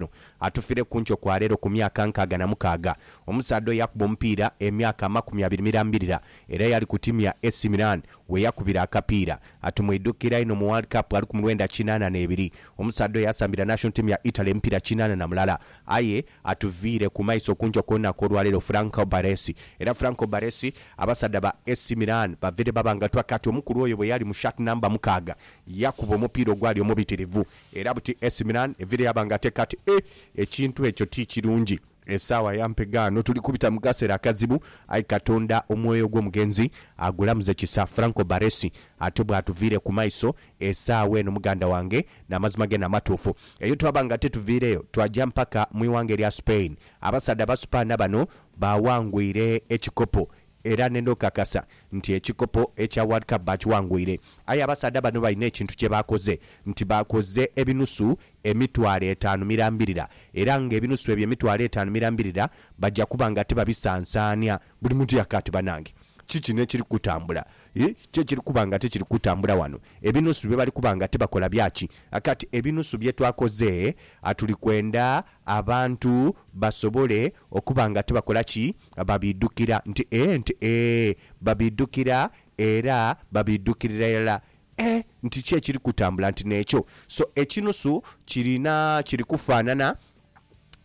ono atufire kunkyo kwaleero ku myaka nkaaga na mukaaga. Omusaadha oyo yakuba omupiira emyaka amakumi abiri mirambirira era yali ku tiimu ya AC Milan weyakubira akapiira. Atumwidhukira inho mu World Cup ali ku mulwenda kinaana n'ebiri. Omusaadha oyo yasambira national team ya Italy emipiira kinaana na mulala. Aye atuviire ku maiso kunkyo kw'olunaku olwaleero Franco Baresi. Era Franco Baresi abasaadha ba AC Milan baveire babangatwa kati omukulu oyo bweyali mu shirt number mukaaga yakuba omupiira ogwali omubitirivu Era buti Ac Milan evire yaba nga ateka ati, E, ekintu ekyo ti kirungi. Esaawa ya mpe ghano. Tuli kubita mu kasera akazibu, aye Katonda omwoyo gw'omugenzi agulamuze kisa. Franco Baresi, Ate bwatuviire ku maiso, esaawa eno, muganda wange, n'amazima gene amatuufu, eyo twaba nga tituviireyo, twaja mpaka mu ighanga erya Spain. Abasaadha Abasupaana bano baawangwire ekikopo. Era ne ndhokakasa nti ekikopo ekya World Cup baakiwangwire. Aye abasaadha bano balina ekintu kye baakoze nti baakoze ebinusu emitwalo etaanu mirambirira era ng'ebinusu ebyo emitwalo etaanu mirambirira baja kuba nga tibabisansaania. Buli muntu yaka ati banange ki kino ekiri kutambula? Ii ki ekiri kuba nga tikiri kutambula wano? Ebinusu bye bali kuba nga tibakola bya ki? Aka ati ebinusu bye twakoze tuli kwenda Abantu basobole okuba nga tibakola ki? Babiidhukira. Nti ee, nti ee, babiidhukira era babiidhukirira irala. E, nti ki ekiri kutambula? Nti n'ekyo. So, ekinusu kirina, kiri kufaanana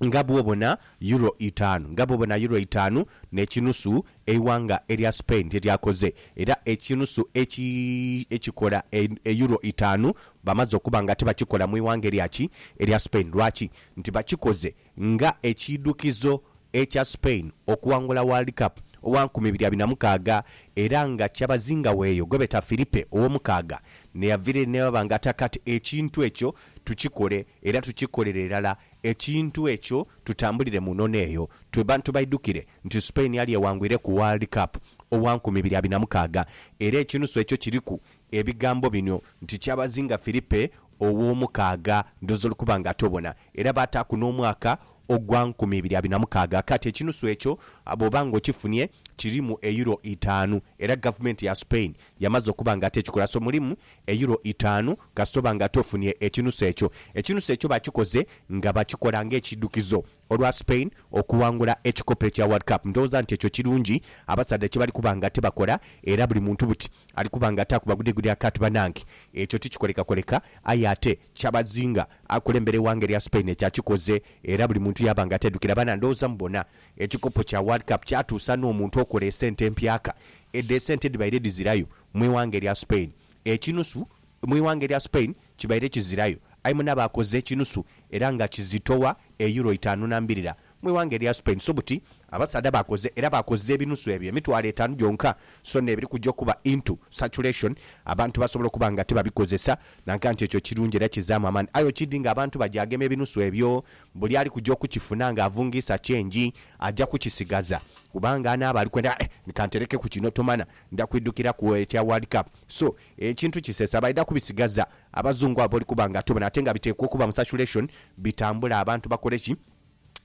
nga bw'obona yuro itaanu, nga bw'obona yuro itaanu n'ekinusu Eighanga erya Spain lyeryakoze era ekinusu eki ekikola eyuro itaanu bamaze okuba nga tibakikola mu ighanga erya ki? Erya Spain. Lwaki? Nti bakikoze nga ekiidhukizo ekya Spain okuwangula World Cup owa nkumi ibiri abiri na mukaaga era nga kyabazinga w'eyo gwebeeta Filipe Owomukaaga n'eyaviraire n'aba nga ati Kati ekintu ekyo tukikole era tukikolere irala ekintu ekyo tutambulire mu nono eyo tube bantu baidhukire nti Spain yali ewangwire ku World Cup owa nkumi ibiri abiri na mukaaga era ekinusu ekyo kiriku ebigambo bino nti kyabazinga Filipe ow'omukaaga ndhoozi olw'okuba nga toobona era baataaku n'omwaka ogwa nkumi ibiri abiri na mukaaga kati ekinusu ekyo bw'oba nga okifunye kirimu Euro itaanu era gavumenti ya Spain yamaze okuba nga ate ekikola so mulimu Euro itaanu kasita oba nga ate ofunye ekinusu ekyo. Ekinusu ekyo bakikoze nga bakikola ng'ekidhukizo Olwa Spain okuwangula ekikopo ekya World Cup, ndhowooza nti ekyo kirungi abasaadha kye bali kuba nga tibakola era buli muntu buti ali kuba nga ataaku bagudegudya kati banange ekyo tikikolekakoleka aye ate Kyabazinga akulembera eighanga erya Spain ekyo akikoze era buli muntu yaaba nga ateedhukira baana ndhowooza mubona ekikopo kya World Cup kyatuusa n'omuntu okola esente empyaka edho esente edhibaire dhizirayo mu ighanga erya Spain ekinusu mu ighanga erya Spain. Kibaire kizirayo aye mune abaakoze ekinusu era nga kizitowa e Euro itaanu na mbirira mu ighanga erya Spain so buti abasaadha baakoze era baakoze ebinusu ebyo emitwalo etaanu gyonka so n'ebiri kuja okuba into circulation abantu basobola okuba nga tibabikozesa nanka nti ekyo kirungi era kizaamu amaani aye okidi nga abantu bagyagema ebinusu ebyo buli ali kuja okukifuna nga avungiisa change aja kukisigaza kubanga anaaba ali kwenda eh kanterekeku kino tomana nda kwidukiraku ekya World Cup so Ekintu kisesa baidha kubisigaza abazungu abo olikuba nga tobona ate nga biteekwa okuba mu circulation bitambule abantu bakole ki?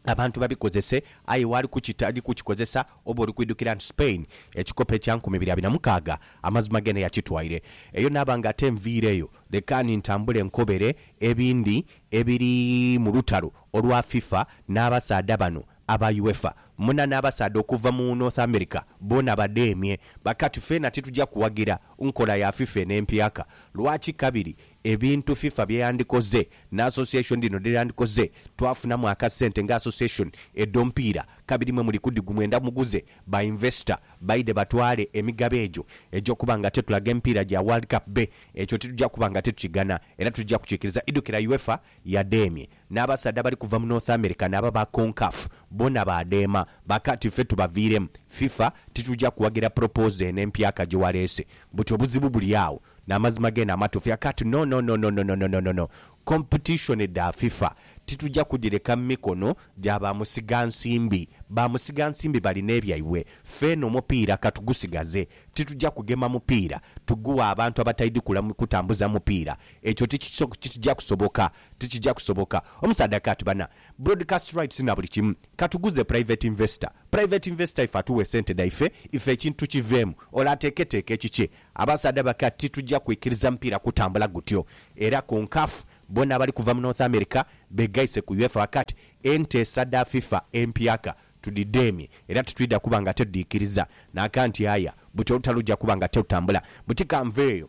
Abantu babikozese aye waali kukita ali kukikozesa oba oli kwidhukira nti Spain ekikopo ekya nkumi ibiri abiri na mukaaga amazima geene yakitwaire eyo naaba nga ate nviireyo lekaani ntambule nkobere ebindi ebiri mu lutalo olwa FIFA n'abasaadha bano Aba UEFA muna n'abasaadha okuva mu North America boona badheemye. Bakati feena tituja kuwagira nkola ya fifa eno empyaka. Lwaki kabiri? Ebintu fifa bye yandikoze ni association dhino dhe dhandikoze, twafunamu akasente nga association edh'omupiira kabiri mwe muli kudhigu mwenda muguze ba investor baidhe batwale emigabo egyo egy'okuba nga tetulaga emipiira gya World Cup be. Ekyo tituja kuba nga titukigana era titujja kukikiriza, Idhukira UEFA yadheemye. N'abasaadha abali kuva mu North America n'aba ba CONCACAF bona baadheema, bakaati ffe tubaviiremu. Fifa tituja kuwagira proposal eno empya ka gye waleese. Buti obuzibu buli agho. N'amazima geene amatuufu akaati nononononononononono. Competition dha Fifa tituja kudhireka mu mikono gya ba musigansimbi. Ba musigansimbi balina ebyaibwe. Ffe eno omupiira ka tugusigaze. Tituja kugema mupiira tugughe abantu abataidhi kutambuza mupiira. Ekyo tikija kusoboka. Tikija kusoboka. Omusaadha Kat bana broadcast rights na buli kimu. Katuguze private investor. Private investor ife atuwe sente dhaife ife ekintu tukiveemu ole ateeketeeke ekikye. Abasaadha ba Kat titujja kwikiriza mupiira kutambula gutyo. Era Concaf bona abali kuva mu North America begaise ku UEFA ba Kat enteesa dha FIFA empyaka tudidheemye era titwidha kuba nga tetudhiikiriza. Nakat aya buti olutalo lujja kuba nga terutambula. Buti kanveeyo.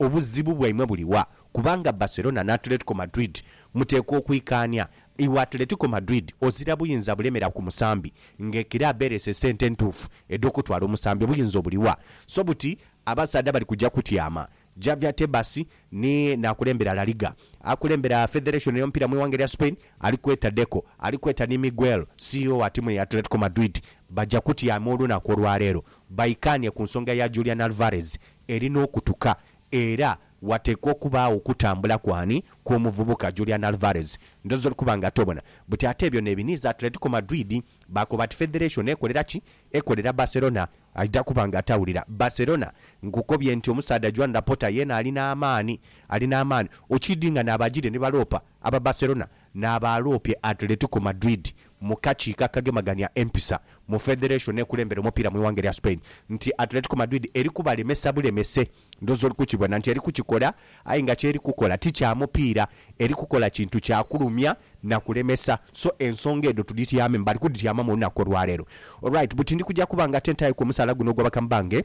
Obuzibu bwaimwe buli wa? Kubanga Barcelona ni Atletico Madrid muteekwa okwikaania. Iwe Atletico Madrid ozira buyinza bulemera ku musambi nga ekiraabu ereese sente entuufu edh'okutwala omusambi. Obuyinza obuli wa? So buti abasaadha bali kuja kutyama. Javier Tebas ni n'akulembera La Liga, akulembera Federation y'omupiira mu ighanga erya Spain ali kweta Deco, ali kweta ni Miguel, CEO wa tiimu ya Atletico Madrid baja kutyama olunaku olwaleero baikaanie ku nsonga ya Julian Alvarez eri n'okutuka era wateekwa okubaagho okutambula ku ani kw'omuvubuka Julian Alvarez ndhoozi oli kuba nga tobona. Buti ate ebyo n'ebiniiza Atletico Madrid baakoba ati federation ekolera ki? Ekolera Barcelona aidha kuba nga tawulira. Barcelona nkukobye nti omusaadha Joan Laporta yeena ali n'amaani, ali n'amaani. Okiidhi nga n'abaagire ni baloopa aba Barcelona N'abaaloope Atletico Madrid mu kakiiko akagemagania empisa mu federation ekulembera omupiira mu ighanga erya Spain nti Atletico Madrid eri kubalemesa bulemese. Ndhoozi oli kukibona nti eri kukikola aye nga ky'eri kukola ti kya mupiira, eri kukola kintu kya kulumya na kulemesa. So ensonga edho tudhityamemu, bali kudhityamamu olunaku olwaleero. Alright, buti ndi kuja kuba nga te ntaayoku omusaala guno ogw'abakamu bange.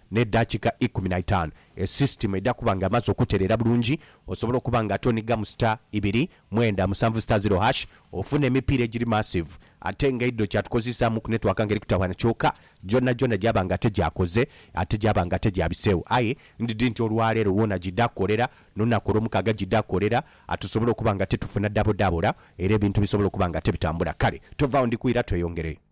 ne dakika ikumi na itanu e system edha kuba nga emaze okutereera bulungi osobola okuba nga ate onigamu star ibiri mwenda musanvu star zero hash ofuna emipiira egiri massive ate nga eidho kyatukozesamu ku network nga eri kutawaana kyoka gyona gyona gyaba nga ate gyakoze ate gyaba nga ate gyabisewo aye ndidi nti olwaleero wona gidha kolera nolunaku olwomukaaga gidha kolera ate osobole okuba nga ate tufuna dabodabora era ebintu bisobole okuba nga ate bitambula kale tovaawo ndikuira tweyongere.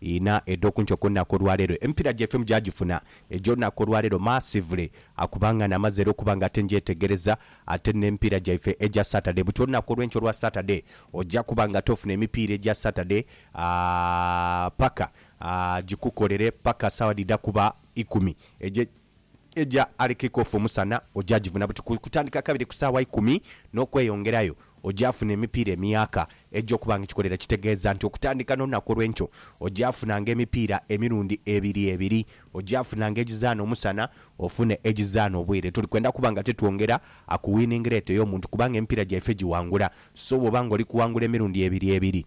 Inha edhokunkyo kulunaku olwaleero emipiira gyaife mugyagifuna egyolunaku olwaleero massively akuba nga namaze era okuba nga ate ngyetegereza ate nemipiira gyaife egya Saturday butyo olunaku olwenkya olwa Saturday ogya kuba nga ate ofuna emipiira egya Saturday aah paka aah gikukolere paka sawa dhidha kuba ikumi egye Eja ali kick off omusana oja jivuna buti ku kutandika kabiri ku saawa ikumi n'okweyongerayo. Oja funa emipiira emiyaaka egy'okuba nga ekikolera kitegeeza nti okutandika n'olunaku olw'enkyo oja funanga emipiira emirundi ebiri ebiri. Oja funanga egizaana omusana ofune egizaana obwire. Tuli kwenda kuba nga titwongera ku winning rate ey'omuntu kubanga emipiira gyaife giwangula. So bw'oba nga oli kuwangula emirundi ebiri ebiri,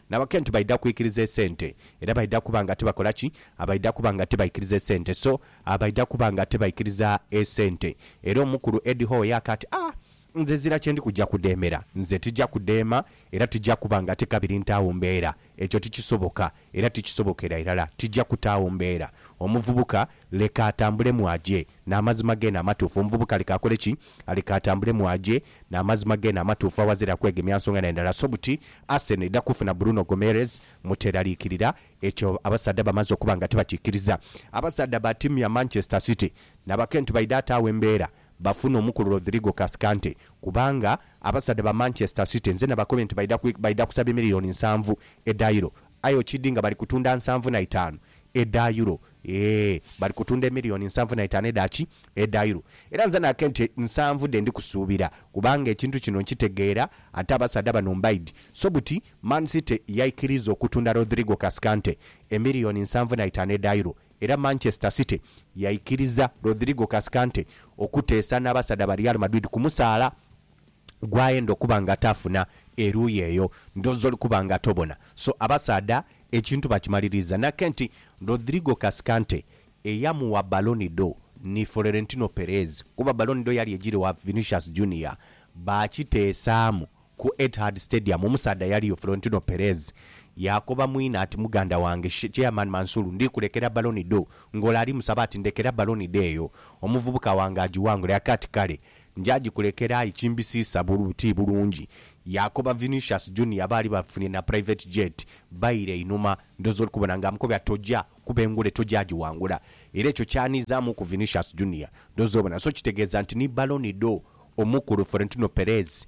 Nabakentu baidha kwikiriza esente era baidha kuba nga tibakola ki? Abaidha kuba nga tibaikiriza esente so abaidha kuba nga tibaikiriza esente era omukulu Eddie Howe yaaka ati aah nze ezira kyendi kuja kudemera nze tija kudeema era tija kuba nga tikabiri ntaagho mbeera ekyo tikisoboka era tikisobokera irala tija kutaagho mbeera omuvubuka leka atambulemu aje N'amazima geene amatuufu. Omuvubuka aleke akole ki? Aleke atambulemu aje n'amazima geene amatuufu aghazira kwegemya nsonga na ndala. So buti Arsenal edha kufuna Bruno Gomeres mu teraliikirira. Ekyo abasaadha bamaze okuba nga tibakikiriza. Abasaadha ba tiimu ya Manchester City na bakentu baidha ataagho embeera bafune omukulu Rodrigo Cascante kubanga abasaadha ba Manchester City nze nabakobye nti baidha baidha kusaba emiliyoni nsanvu edha Euro aye okidi nga bali kutunda nsanvu na itaanu. edha Euro. Eeh! Bali kutunda emiliyoni nsanvu na itaanu edha ki? Edha Euro. Era nze naake nti nsanvu dhe ndi kusuubira kubanga ekintu kino nkitegeera ate abasaadha bano mbaidhi. So buti Man City yaikiriza okutunda Rodrigo Cascante emiliyoni nsanvu na itaanu edha Euro era Manchester City yaikiriza Rodrigo Cascante okuteesa n'abasaadha ba Real Madrid kumusaala. gwayenda okuba nga tafuna eruuyi eyo ndho zoli kuba nga tobona so abasaadha ekintu bakimaliriiza nake nti Rodrigo Cascante eyamuwa baloni do ni Florentino Perez kuba baloni do yali egiri wa Vinicius Junior baakiteesaamu ku Etihad Stadium omusaadha yaliyo Florentino Perez yaakoba mwine ati muganda wange Chairman Mansour ndi kulekera baloni do ng'ole ali musaba ati ndekera baloni do eyo omuvubuka wange agiwangule aka ati kale Nja gikulekera aye kimbisiisa ti bulungi, yaakoba Vinicius Junior baali bafunye na private jet baire einhuma. Ndhoozi oli kubona nga amukobya toja kuba engule toja giwangula era ekyo kyanhizaamuku Vinicius Junior ndhoozi obona. So kitegeeza nti ni Ballon d'Or omukulu Florentino Perez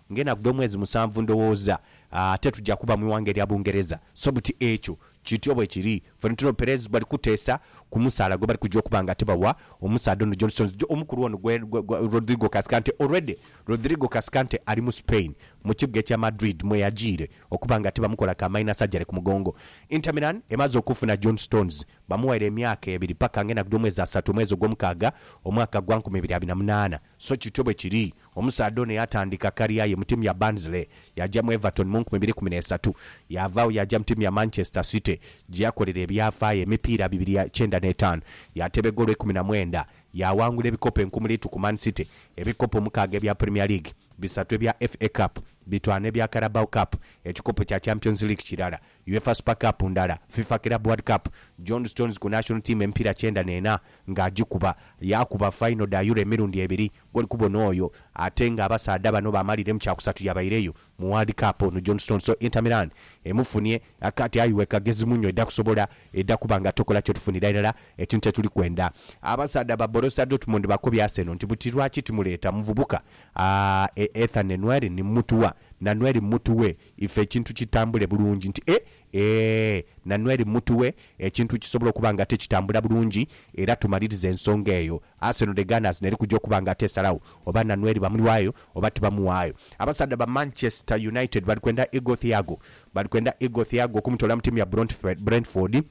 Ng'enaku dh'omwezi musanvu ndhowooza ate tuja kuba mu ighanga erya Bungereza. So buti ekyo. Kityo bwe kiri. Ffe nituloba Perez bali kuteesa ku musaala gwe bali kuja okuba nga tibawa omusaadha ono Johnson's jo omukulu ono gwe, gwe, Rodrigo Cascante. Already Rodrigo Cascante ali mu Spain, mu kibuga ekya Madrid mwe yajiire okuba nga tibamukola ka minor surgery ku mugongo. Inter Milan emaze okufuna John Stones. Bamughaire emyaka ebiri paka ng'enaku dh'omwezi asatu omwezi ogw'omukaaga omwaka gwa nkumi ibiri abiri na munaana. So kityo bwe kiri. Omusaadha ono yaatandika kaliya ye mu tiimu ya Barnsley, yaaja mu Everton mu nkumi ibiri kumi n'esatu, yaava agho yaaja mu tiimu ya Manchester City gye yakolera ebyafaayo emipiira bibiri ya kyenda n'etaanu. Yaateba egoolo ikumi na mwenda, yaawangula ebikopo enkumuliitu ku Man City, ebikopo mukaaga ebya Premier League, bisatu ebya FA Cup, bitwanu ebya Carabao Cup, ekikopo kya Champions League kirala. Uefa Super Cup ndala, Fifa Club World Cup, John Stones ku National Team emipiira kyenda n'ena nga agikuba. Yaakuba fayino dha Euro emirundi ebiri ng'oli kubona oyo ate nga abasaadha bano baamalire mu kyakusatu yabaireyo mu World Cup ono John Stones so Inter Milan emufunie kati aye iwe kagezi muno edha kusobola edha kuba nga tokola kyotufunira irala ekintu kye tuli kwenda. Abasaadha ba Borussia Dortmund bakobye Arsenal nti buti lwaki timuleeta muvubuka a Ethan Nwaeri ni mmutuwa, na Nwaeri mmutughe Ife ekintu kitambule bulungi nti e, ee, Nanweri mu mutu we, ekintu kisobola okuba nga te kitambula bulungi, era tumaliriza ensonga eyo. Arsenal The Gunners n'eri kuja okuba nga te esalagho oba Nanweri bamuwaayo oba tibamuwaayo. Abasaadha ba Manchester United bali kwenda Igor Thiago. Bali kwenda Igor Thiago okumutoola mu tiimu ya Brentford.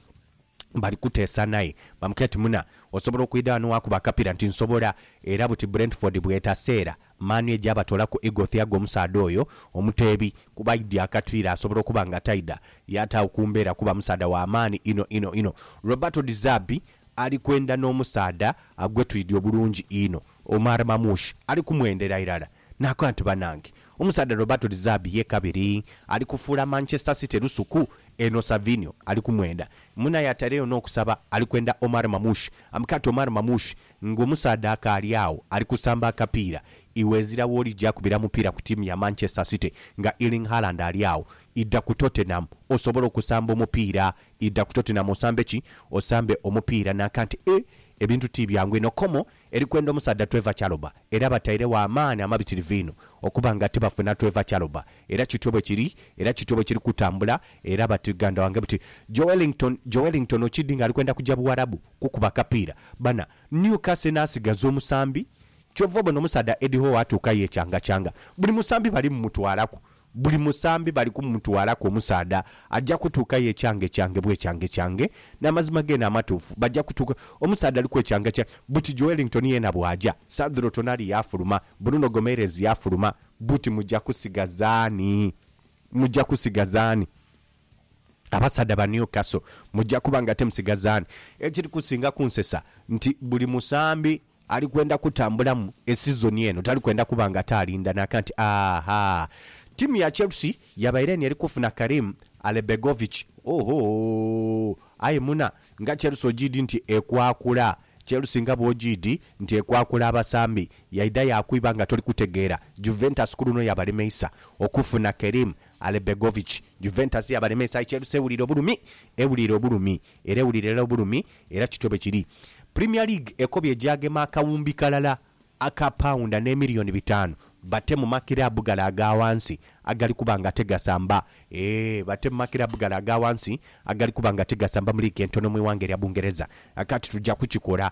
bali kuteesa naye. Bamukira ti, Muna, osobola okwidha ghano waakuba akapira? Nti, Nsobola. Era buti Brentford bw'etase era Man U eja batoolaku Igor Thiago omusaadha oyo omuteebi kuba aidhye akatpira asobola okuba nga taidha yaataagho ku mbeera kuba musaadha wa maani inho inho inho. Roberto De Zerbi ali kwenda n'omusaadha gwe twidhi obulungi inho, Omar Mamouche ali kumwendera irala. Naakoba nti, Banange, omusaadha Roberto De Zerbi ye kabiri ali kufuula Manchester City lusuku eno. Savinho ali kumwenda. Munaye atairegho n'okusaba ali kwenda Omar Mamouche. Amukati Omar Mamouche ng'omusaadha akaali agho ali kusamba akapiira. Iwe ezira w'oli ja kubira mupiira ku tiimu ya Manchester City nga Erling Haaland ali agho. Idha ku Tottenham osobole okusamba omupiira. Idha ku Tottenham osambe ki? Osambe omupiira. Naakoba nti, Eeh, ebintu ti byangu eno. Como Eri kwenda omusaadha tweva kyaloba, era batairegho amaani amabitirivu inho okuba nga tibafuna tweva kyaloba. Era kityo bwe kiri, era kityo bwe kiri kutambula. Era bati, Ganda wange buti, Joelinton, Joelinton okidi nga ali kwenda kuja Buwarabu kukuba kapiira. Bana, Newcastle enaasigaza omusambi. Kyova obona omusaadha Eddie Howe atuukayo ekyangakyanga. Buli musambi bali mumutwalaku. Buli musambi bali kumutwalaku omusaadha aja kutuuka ye kyangekyange bwekyangekyange, n'amazima geene amatuufu. Baja kutuuka omusaadha aliku ekyangekyange buti Joelinton yeena bw'aja, Sadhro Tonali yaafuluma, Bruno Gomeirez yaafuluma, buti muja kusigaza ani? Muja kusigaza ani? Abasaadha ba Newcastle muja kuba ng'ate musigaza ani? Ekiri kusinga kunsesa nti buli musambi Ali kwenda kutambulamu esizoni eno, tali kwenda kuba ng'ate alinda naaka nti, Ahaa! Ttiimu ya Chelsea yabaire eno eri kufuna Karim Alebegovic. Ohoo! Aye muna, nga Chelsea ogiidhi nti ekwakula! Chelsea nga bw'ogiidhi nti ekwakula abasambi, yaidha yaakwiba nga toli kutegeera. Juventus ku luno yabalemeisa okufuna Kerim Alebegovic. Juventus yabalemeisa aye Chelsea ewulira obulumi, ewulira obulumi. era ewulira irala obulumi era kityo bwe kiri. Premier League ekobye egyagema akawumbi kalala aka paunda n'emiliyoni bitaanu bate mu makiraabu gale aga ghansi agali kuba nga tigasamba eeh bate mu makiraabu gale aga ghansi agali kuba nga tigasamba mu liigi entono mu ighanga erya Bungereza. Kati tuja kukikola.